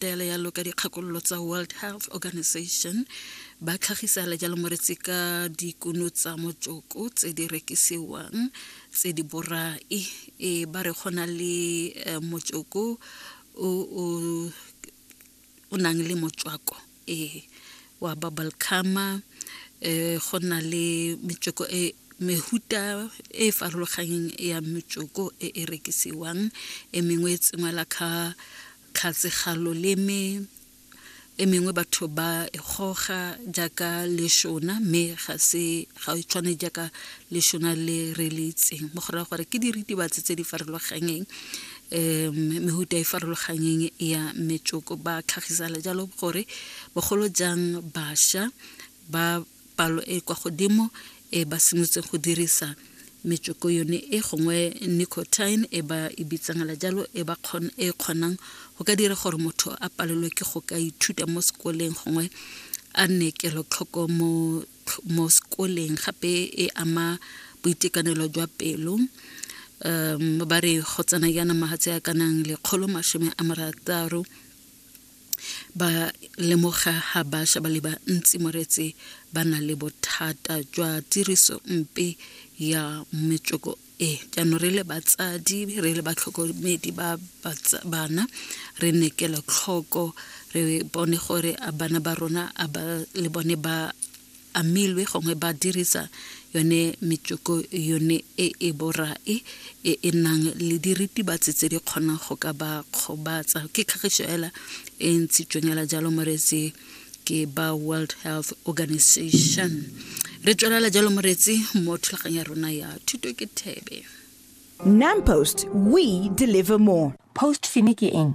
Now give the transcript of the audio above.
taelo ya loka dikgakololo tsa world health organization ba tlhagisa le jalo moretsi ka dikuno tsa motsoko tse di rekisiwang tse di borai e ba re gona le eh, motsoko o nang le motswako ee wa bubble cama um eh, go na le metsweko e mehuta e e farologanyeng ya metsoko e e rekisiwang e mengwe e tsengwela ka Tlhatse ga loleme e mengwe batho ba e goga jaaka leshona mme ga se ga e tshwane jaaka leshona le re le itseng mo go raya gore ke diritibatsi tse di farologanyeng um mehuta e farologanyeng ya metsoko ba tlhagisala jalo gore bogolo jang bašwa ba palo e kwa godimo e ba simolotseng go dirisa metsoko yone e gongwe nicotine e ba e bitsangela jalo e ba e kgonang go ka dira gore motho a palelwe ke go ka ithuta mo sekoleng gongwe a nne kelotlhoko mo mo sekoleng gape e ama boitekanelo jwa pelo um ba re go tsena yana magatse a kanang lekgolo masome a marataro ba lemoga ga bašwa ba le bantsi moretse ba na le bothata jwa tiriso mpe ya metsweko e jaanong re le batsadi re le batlhokomedi ba bana re nekela tlhoko re bone gore a bana ba rona a ba le bone ba amilwe gongwe ba dirisa yone metsoko yone e e borae e e nang le diritibatsi tse di kgonang go ka ba kgobatsa ke kgagiso ela e ntshitsweng ela jalo moretsi ke ba world health organization re tswelela jalo moretsi mo thulagang ya rona ya thuto ke thebe nampost we deliver more post fini ke eng